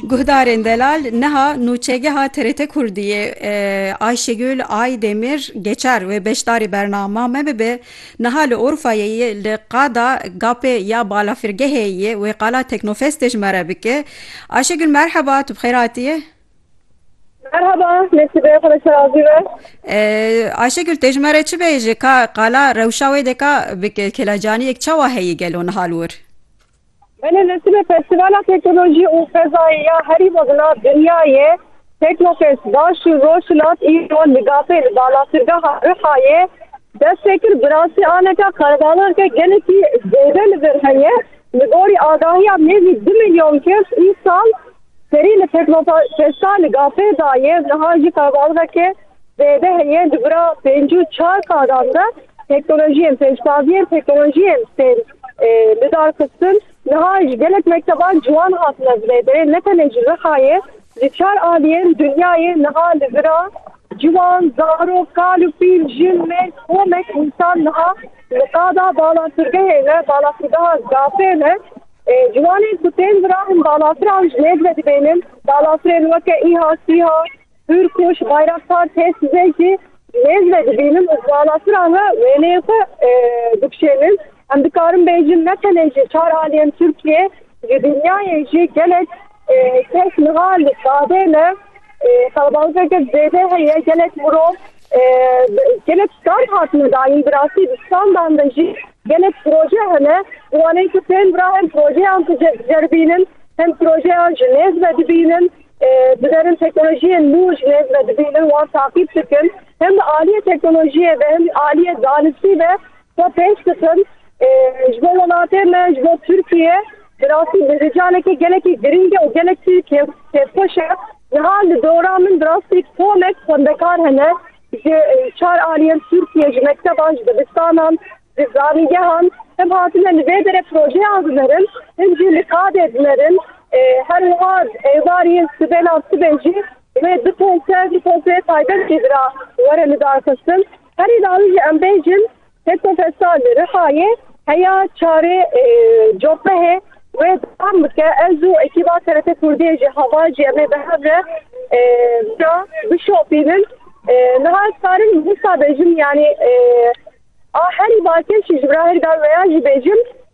Guhdarên delal niha nûçegeha TRT Kurdiyê Ayşegül Aydemir geçar wê beşdarî bernama me bibe niha li Urfayê yê li qada gapê ya balafirgehê yê wê qala Teknofestê ji me re bike. Ayşegül merheba tu bi xêr hatiyê. Merhaba nesibe xwe şer azî be. Ayşegül tê ji me re çi bêje ka qala rewşa wê deka bike kêlacaniyek çawa heye gelo niha li wir? Belê li Sibê Festîvala Teknolojî û Fezayê ya herî mezin a dinyayê Teknofest baş û rojhilat îro li Gapê li balafirgeha Rihayê dest pê kir. Birasî aneka qelebalixeke gelekî zêde li vir heye. Li gorî agahiya nêzî du milyon kes îsal Serî li pêkbata Kesta li Gafê da ye, niha jî qelebalixeke zêde heye di bira pênc û çar sadan de teknolojiyên pêşbaziyên teknolojiyên tên lidarxistin. Niha ji gelek mekteban ciwan hatine vilêbirin ne tenê ji Rihayê, ji çar aliyên dinyayê niha li vira ciwan, zarok, kal û pîl, jin, mêrg, komek, însan niha li qada balatirgehê ne, balatirgeha Gafê ne. Ciwanên ku tên virahin balafran ji nêz ve dibênin. Balafirên weke îha, sîha, hûrkuş, bayraktar, têsizê jî ji nêz ve dibînin û di balafiran re wêneyên xwe dikişênin. Em dikarin bêjin ne tenê ji çar aliyên Tirkiyê, ji dinyayê jî gelek Kes niha li badê me qelebalîzê kir zêde heye gelek mirov gelek stand hatine dayîn bi rastî di standan de jî gelek proje hene bi wanê ku tên vira hem projeyan ku ceribînin hem projeyan ji nêz ve dibînin di derin teknolojiyên nû ji nêz ve dibînin wan taqîb dikin hem di aliyê teknolojiyê ve hem aliyê zanistî ve Xwe pêş dikim ji bo welatê me, ji bo Tirkiye. Bi rastî bi vê canekê gelekî girîng e û gelekî kêfxweş e. Niha li dora min bi rastî tomek xwendekar hene ji çar aliyên Tirkiye, ji mekteban, ji dibistanan, ji zanîngehan hin hatine li vê derê projeyan dinêrin, hin jî li KAD'ê dinêrin. Her wiha êvarî sibênan sibê jî wê du pompeyê taybet jî bira were lidarxistin. Herî dawî jî em bêjin Pêtofesal li Rihayê heya çarê copehê wê dewam bike. Ez û ekîba TRT Kurdiyê jî heval jî em ê bi hev re vira bişopînin. Niha ez karim wisa bêjim yanî a herî bakiş jî ji ber a herî dawî veya jî bêjim.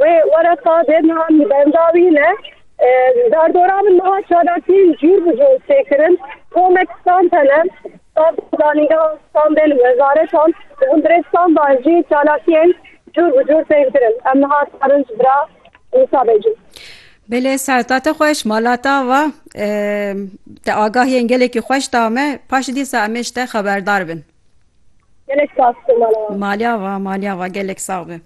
Wê wereta dê niha min benda wî ne. Derdora min niha çalakiyên cûr bi cûr tê kirin. Komek stan tene, stan zanîngehan, stan bên û wezaretan û hundirê stan de jî çalakiyên cûr bi cûr tên kirin. Em niha dikarin ji bira wisa bêjin. Bilê serta te xweş, mala ta va. Te agahiyên gelekî xweş da me. Paşê dîsa em ê ji te xeberdar bin. Gelek spas te mala wan. Maliya va, maliya va gelek sağ be.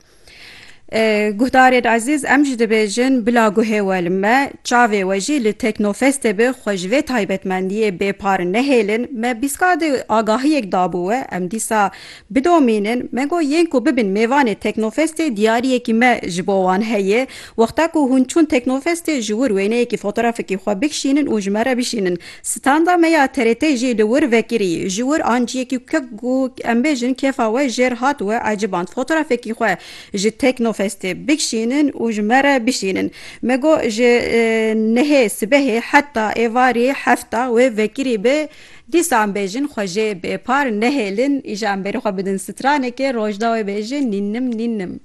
Guhdarên ezîz em jî dibêjin bila guhê we li me çavê we jî li Teknofestê bi xwe ji vê taybetmendiyê bêpar nehêlin me bîska di agahiyek dabû we em dîsa bidomînin me got yên ku bibin mêvanê Teknofestê diyariyekî me ji bo wan heye wexta ku hûn çûn Teknofestê ji wir wêneyekî fotoğrafekî xwe bikişînin û ji me re bişînin Standa me ya TRT'ê jî li wir vekirî. Ji wir anciyekî ku em bêjin kêfa we jêr hat we eciband. Fotoğrafekî xwe ji Teknofestê bikşînin û ji me re bişînin. Me got ji nehê sibehê heta êvarî hefta wê vekirî be dîsa em bêjin xwe jê bêpar nehêlin îşa em berî xwe bidin stranekê rojdawê bêjin nînnim nînnim.